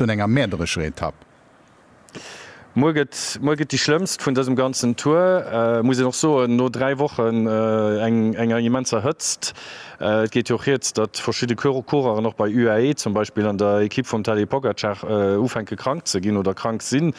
un enger mäerderescher Etapp. Muer gëtt muer gëtt déi schlëmmst vun dësem ganzen Tour, muss een och soen, no 3 Wochen enger immenser Hëtzt. Et geet jo och rieds, datt verschidde Coureuren och bei UAE zum Beispill an der Ekipp vum Tadej Pogacar ufänke krank ze ginn oder krank sinn.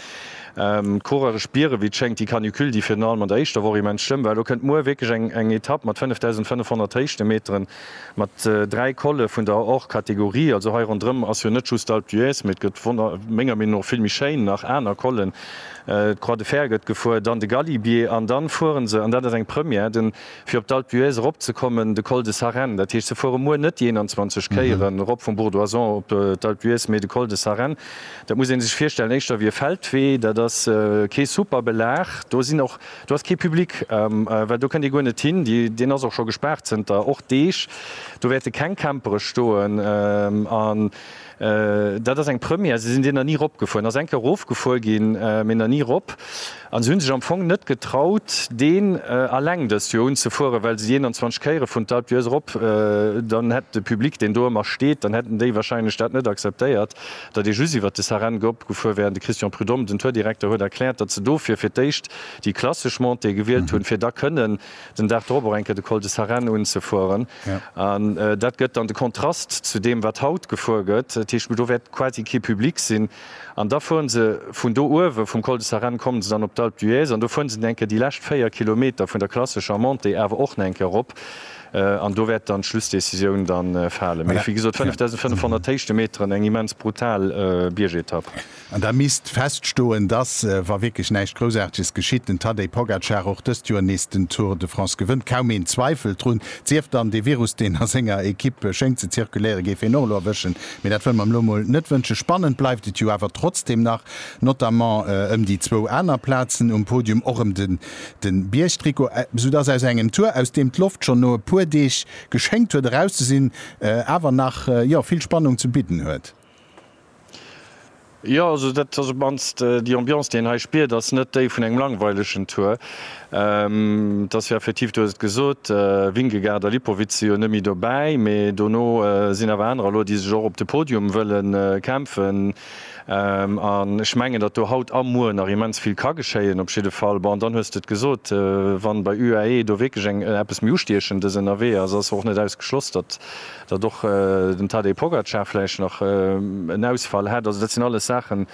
D'Coureure spiere wéi et schéngt déi Canicule, déi virun allem an der éischter Woch immens schlëmm war. Elo kënnt muer wierklech eng Etapp mat 5.500 Héichtemmeteren. Mat dräi Colle vun der Hors-Kategorie, also hei ronderëm, ass jo net just d'Alpe d'Huez, mee et gëtt wonner menger Meenung no vill méi schéin nach aner Collen. D'Croix de Fer gëtt gefuer, dann de Galibier an dann fuere se, an dat ass eng Première, den, fir op d'Alpe d'Huez eropzekommen, de Col de Sarenne. Dat heescht, se fuere muer net déi 21 Kéieren erop vum Bourg d'Oisans op d'Alpe d'Huez, mee de Col de Sarenne. Dat muss ee sech virstellen éischter wéi e Feldwee, dat ass kee super Belag, do sinn och Do ass kee Public, well do kënnt ee guer net hin. Deen ass och scho gespaart zënter och Deeg. Do wäerte keng Campere stoen an dat ass eng Première. Se sinn deeër ni ropgefuer, ass eng Kéier erofgefuer ginn, mee na ni rop. An se hu sech am Fong net getraut, deen alleng dëst Joer unzefueren, well se déi 21 Kéiere vun d'Alpe d'Huez erop, dann hätt de Public, deen do ëmmer steet, dann hätten déi wahrscheinlech dat net acceptéiert. datt ee just iwwert de Sareng opgefuer wär an de Christian Prud'homme, den Tourdirekter, huet erkläert, datt se dofir fir d'éischt déi klassesch Montée gewielt hunn, fir da kënnen den Dag drop och eng Kéier de Col de Sarenne unzefueren. An dat gëtt dann de Kontrast zu deem, wat haut gefuer gëtt. Dat heescht, do wäert quasi kee Public sinn. An da fuere se vun do uewe vum Col de Sarenne, komme se dann op d'Alpe d'Huez an do fuere se dann eng Kéier déi lescht véier Kilometer vun der klassescher Montée awer och nach eng Kéier erop. An do wäert dann d'Schlussdecisioun da falen. Mee wéi gesot, 5.500 Héichtemeteren, eng immens brutal Biergetapp. An da misst feststoen, dass, wa wierklech näischt Groussaarteges geschitt, den Tadej Pogacar och dëst Joer nees den Tour de France gewënnt. Kaum een zweifelt drun. Sief dann, dee Virus, deen a senger Ekipp schéngt ze zirkuléieren, géif hien och elo erwëschen. Mee dat wëlle mer him elo mol net wënschen. Spannend bleift et jo awer trotzdeem nach, notamment ëm déi zwou aner Plazen um Podium, och ëm de Den Biergtrikot, sou dass aus engem Tour aus deem d'Loft schon no e puer Deeg geschéngt huet eraus ze sinn, awer nach jo vill Spannung ze bidden huet. Jo also dat ass op mannst déi Ambiance déi een hei spiert, ass net déi vun engem langweilegen Tour. Et ass jo effektiv, du hues et gesot, Vingegaard a Lipowitz si jo net méi dobäi, mee dono sinn awer anerer elo déi sech och op de Podium wëlle kämpfen. An ech mengen, datt do haut a muer nach immens vill ka geschéien. Op jidde Fall, bon, dann hues de et gesot, wa bei UAE do wierklech eng eppes méi Ustiechendes ënnerwee ass, ass och net ausgeschloss, datt datt och den Tadej Pogacar vläicht nach en Ausfall hätt. Also dat sinn alles Saachen,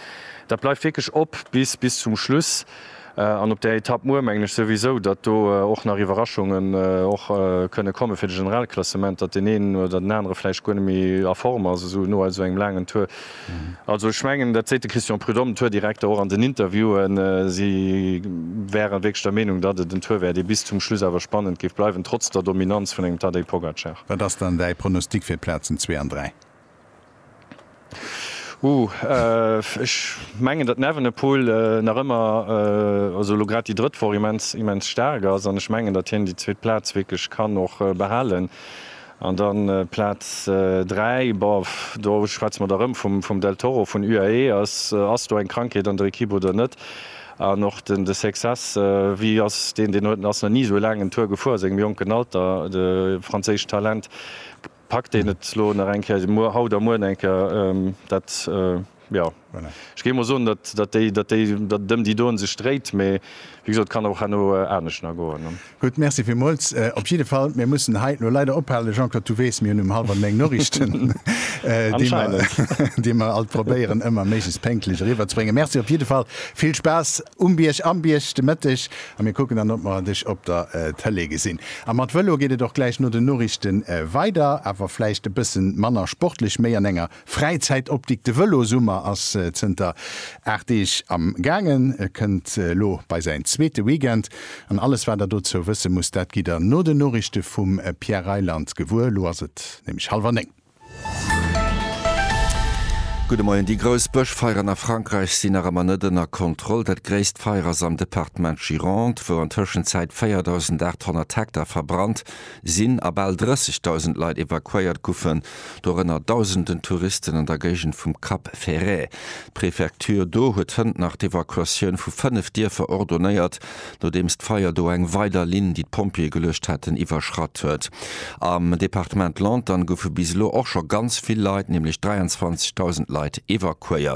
dat bleift wierklech op bis bis zum Schluss. An op där Etapp muer mengen ech souwisou, datt do och nach Iwwerraschungen och kënne komme fir de Generalklassement, datt deen een oder den anere vläicht guer net méi a Form ass esou no esou engem laangen Tour. Also ech mengen, dat seet de Christian Prudhomme, den Tourdirekter, och an den Interviewen, si wäre wierklech der Meenung, datt et en Tour wär, dee bis zum Schluss awer spannend géif bleiwen, trotz der Dominanz vun engem Tadej Pogacar. Wat ass dann däi Pronostic fir d'Plazen zwee an dräi? Uuhh, ech mengen datt Evenepoel nach ëmmer, also elo grad déi drëtt Woch, immens, immens staark ass an ech mengen datt hien déi zweet Plaz wierklech kann och behalen an dann Plaz 3, bof, do schwätze mer da rëm vum, vum Del Toro vun UAE, ass, ass do eng Krankheet an der Ekipp oder net? An och den, de Sexas, wéi ass deen, deen huet, ass nach ni esou laang en Tour gefuer a sengem jonken Alter, de franséischt Talent. Packt een et elo nach eng Kéier, muer, haut a muer eng Kéier, dat, jo, ech géif emol soen, datt, datt déi, datt déi, datt et ëm déi doen sech dréit, mee wéi gesot, et kann och herno anescht nach goen. Gutt, merci villmools. Op jidde Fall, mir mussen hei elo leider ophalen. Jean-Claude, du weess, mir hunn um hallwer néng Noriichten, déi mer, déi mer alt probéieren, ëmmer méiglechst pénktlech eriwwerzebréngen. Merci op jidde Fall, vill Spaass um Bierg, am Bierg de Mëtteg A mir kucken dann, ob mer dech op der Tëlee gesinn. A mat Vëlo geet et och gläich no den Noriichte weider. Awer vläicht e bësse manner sportlech, méi an enger Fräizäitoptik. De Vëlosummer ass zënter 8 Deeg am gaangen, kënnt elo bei säin zweete Weekend. An alles, wat der dozou wësse musst, dat gitt der no den Noriichte vum Pierre Reyland gewuer. Elo ass et nämlech hallwer néng. Gudde Moien, Déi grouss Bëschfeieren a Frankräich sinn nach ëmmer net ënner Kontroll. Dat gréisst Feier ass am Departement Gironde, wou an Tëschenzäit 4.800 Hektar verbrannt sinn a bal 30.000 Leit evakuéiert goufen, dorënner Dausenden Touristen an der Géigend vum Cap Ferret. D'Prefecture do huet hënt nach d'Evakuatioun vu fënnef Dierfer ordonéiert, nodeems d'Feier do eng weider Linn, déi d'Pompjeeë geluecht haten, iwwerschratt huet. Am Departement Lantern goufe bis elo och scho ganz vill Leit, nämlech 23.000 Leit, evakuéiert.